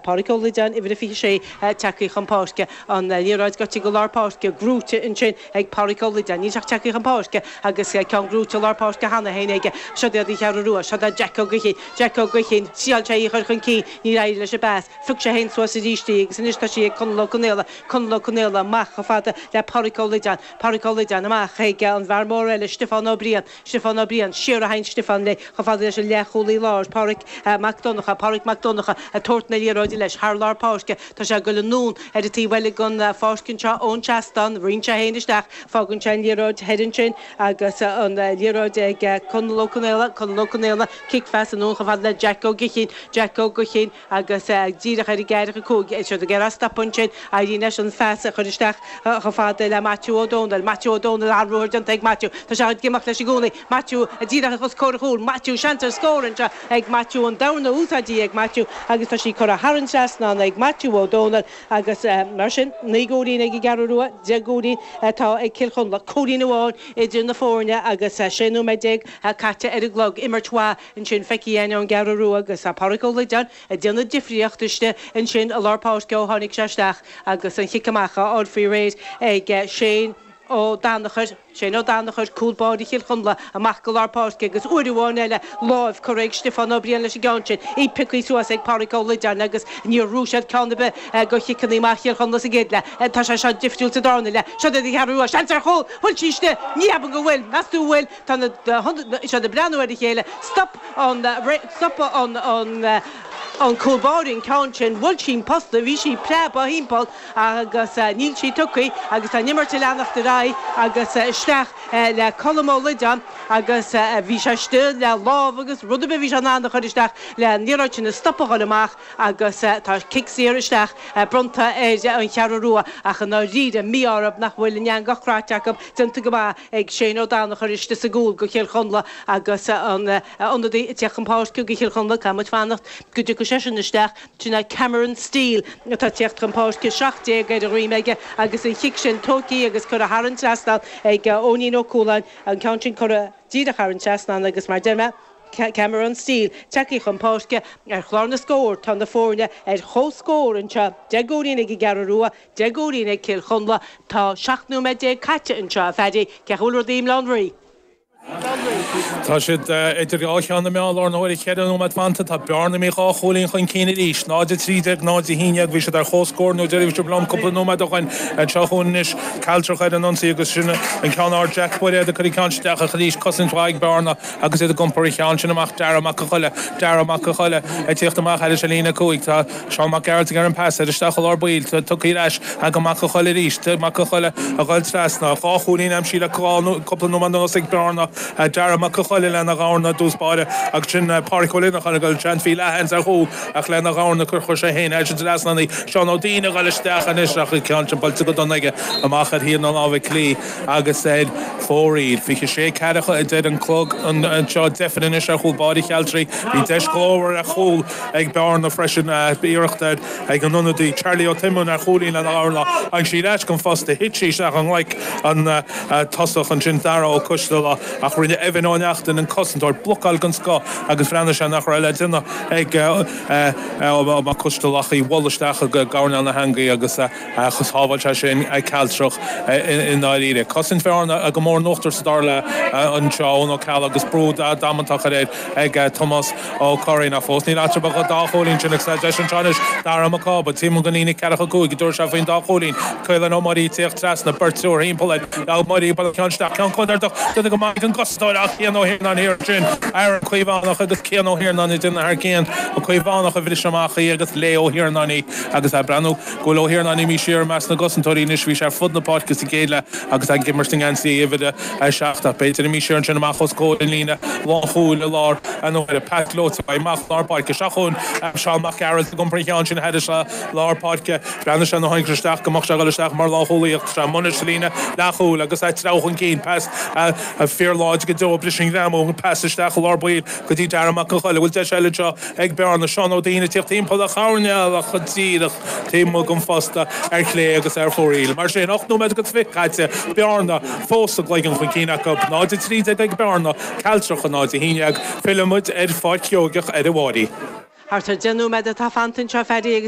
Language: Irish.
Pádraic Ó Loideáin, Uimhir a 26, tagtha chun páirce, an liathróid gaibhte go lár páirce, gnóite ansin ag Pádraic Ó Loideáin. Níl sé ach tagtha chun páirce agus ceann gnóite i lár páirce cheana féin aige. Seod iad an Cheathrú Rua. Seod é Jack Ó Gaoithín. Jack Ó Gaoithín, thriáil sé í a chur chun cinn, níor éirigh leis an bpas. Phioc sé féin suas arís í agus anois tá sí ag Conall Ó Conaola. Conall Ó Conaola, amach chomh fada le Pádraic Ó Loideáin. Pádraic Ó Loideáin, amach chuig an bhfear mór eile, Stiofán Ó Briain. Stiofán Ó Briain, siar a théann Stiofán léi chomh fada leis an leathchúlaí láir, Pádraig Mac Donncha, Pádraig Mac Donncha ag tabhairt na liathróide leis thar lár páirce, Tá sé ag goil anonn ar an taobh eile den pháirc anseo ón seastán, ritheann sé féin isteach, fágann sé an liathróid thoir ansin agus an liathróid ag Conall Ó Conaola, Conall Ó Conaola, Cic phas anonn chomh fada le Jeaic Ó Gaoithín, Jeaic Ó Gaoithín, agus díreach ar an gceathracha cúig, é siúd ag iarraidh stop ansin, éiríonn leis an phas a chur isteach chomh fada le Maitiú Ó Dónaill, Maitiú Ó Dónaill, an-ruathar déanta ag Maitiú, tá sé ag imeacht leis i gcónaí, Maitiú díreach os comhair an chúil, Maitiú, seans ar scór anseo ag Maitiú, an dorna úsáidte ag Maitiú agus tá sí curtha thar an trasnán ag Maitiú Ó Dónaill agus mar sin, naoi gcúilín ag an gCeathrú Rua, deich gcúilín atá ag Cill Chonla, cúilín amháin idir na foirne agus sé nóiméad déag caite ar an gclog, imirt mhaith. Ansin feicthe againn ón gCeathrú Rua agus Pádraig Ó Loideáin ag déanamh difríocht istigh ansin i lár páirce ó tháinig sé isteach agus an chic amach á fháil faoi réir ag Shane Ó Danachair, Shane Ó Danachair, cúl báire Chill Chonla, amach go lár páirce agus uair amháin eile lámh curtha ag Stiofán Ó Briain leis an gceann sin, í pioctha suas ag Pádraig Ó Loideáin agus níor ghnóthaigh siad ceann ar bith de chiceanna amach Chill Chonla sa gcéad leath. Tá sé seo difriúil sa darna leath. Seod iad an Cheathrú Rua, seans ar chúl, bhfuil sí istigh, ní cheapaim go bhfuil, meas tú an bhfuil? tá na siad ag breathnú ar a chéile, stop an stop an an cúl báire an ceann sin, bhuail sí an posta, bhí sí ag preabadh thimpeall agus níl sí tugtha agus tá an imirt ag leanacht ar aghaidh agus isteach le Colm Ó Loideáin agus bhí sé ag súil le lámh agus rud ar bith a bhí sé in ann a chur isteach leis an liathróid sin a stopadh ag goil amach agus tá cic saor isteach bronnta ar an Cheathrú Rua ach i ndáiríre mí-ádh orthu nach bhfuil an eangach craite acu déanta go maith. ag Shane Ó Danachair istigh sa gcúl do Chill Chonla agus an t-ionadaí ag teacht chun páirce do Chill Chonla, caithfidh muid fanacht go dtiocfaidh seisean isteach, sin é Cameron Steele atá ag teacht chun páirce, seacht déag ar a dhroim aige agus an chic sin tóigthe agus curtha thar an trasnán ag Eoinín Ó Cualáin, an ceann sin curtha díreach thar an trasnán agus mar a deir mé, Cameron Steele tagtha chun páirce. Ar chlár na scór tá na foirne ar chomhscór anseo, deich gcúilín ag an gCeathrú Rua, Deich gcúilín ag Cill Chonla. Tá 17 nóiméad caite anseo, a Phaddy. Cén chaoi a bhfuil rudaí i mBaile Átha an Rí? Tá siad idir dhá cheann na meá i láthair na huaire, 4 nóiméad fanta. Tá Bearna imithe dhá chúilín chun cinn arís, 0 a 13, 0 a 11. Bhí siad ar chomhscór an uair dheiridh a bhí sibh liom cúpla nóiméad ó shoin. Anseo chugainn anois, Cealtrach ar an ionsaí agus sin an ceann ard. Jack Bairéad ag cur an ceann isteach ach arís cosaint mhaith ag Bearna agus iad ag iompar an cheann sin amach. Dara Mac Coille, Dara Mac Coille ag teacht amach thairis ar líne a cúig. Tá. Seán Mac Gearailt ag tabhairt an pas, ard isteach i lár baill, tugtha ar ais ag Mac an Choill arís, Mac an Choill a ghoil trasna, dhá chúilín aimsithe le cúpla nóiméad anuas ag Bearna, Darragh Mac an Choill lena dhorna i dtús báire agus sin Páraic Ó Lineacháin a ghoil, John Phí Lehane ar chúl ach lena dhorna chuir sé féin air sin trasna, Seán Ó Duinn a ghoil isteach anois ach an ceann sin buailte go dona aige amach ar thaobh na láimhe clí agus ar fóraoil. 26:40 a deir an clog anseo, deifir anois ar chúl báire Chealtrach, bhí deis ghlórmhar ar chúl. Ag bearna freisin ba iarracht ag an ionadaí Charlie Ó Tuimoill ar chúilín lena dhorna agus sí i leaca an phosta. Thit sí isteach i nglaic an tosaí ansin Darragh Ó Coisdealbha ach rinne Evan Ó Neachtain, an cosantóir, blocáil den scoth agus bhreathnaigh sé nach raibh le déanamh ag Ó Coisdealbha ach í a bhualadh isteach i gcoirnéal na heangaí agus Ach shábháil sé sin Cealtrach i ndáiríre. Cosaint Bhearna go mór in uachtar sa dara leath anseo, Eoin Ó Ceallaigh agus brú damanta curtha air ag Tomás Ó Curraoin. Ach fós níl eatarthu ach dhá chúilín sin agus deis anseo anois Darragh Mac Cába. Tiomána go ndéanadh ceathar nó cúig go dtabharfadh sé faoin dá chúilín. Caolan Ó Muirí ag tíocht trasna, beirt triúr thimpeall air. Ó Muirí buaileann ceann isteach ceann contúirteach déanann go maith an cosantóir ach Cian Ó hIarnáin thiar sin, Aaron Caomhánach agus Cian Ó hIarnáin duine ar chaon. Ó Caomhánach a bhris amach í agus léigh Ó hIarnáin í agus é ag breathnú. go bhfuil Ó hIarnáin imí siar i measc na gcosantóirí anois. Bhí sé ar fud na páirce sa gcéad leath agus ag imirt i ngeansaí uimhir a 7 ach b'fhéidir imí siar ansin amach os comhair an líne lánchúil i lár na heagraíochta. Pas gleoite uaidh amach lár páirce. Isteach chuig Seán Mac Gearailt ag iompar an cheann sin thar lár páirce. Bhreathnaigh sé ina thosach isteach go mbeadh sé ag dul isteach mar lánchúlaí ach d'fhan Monnet sa líne leathchúil agus é ag treabhadh chun cinn. Pas fíorláidir go deo a bhris an greamú. Pas isteach i lár baill go dtí Darragh Mac an Choill a bhfuil deis eile anseo. ag bearna Seán Ó Duinn ag tíocht timpeall a choirnéil ach go díreach taobh amuigh den phosta ar chlé agus ar fóraoil. Mar sin, ocht nóiméad agus fiche caite, bearna fós a gcloigeann chun cinn acu, 0:13 ag bearna Cealtrach náid a haon déag. Fillfimid ar pháirc Sheoigeach ar ball arís. Thart ar deich nóiméad atá fanta anseo, Phaddy, agus.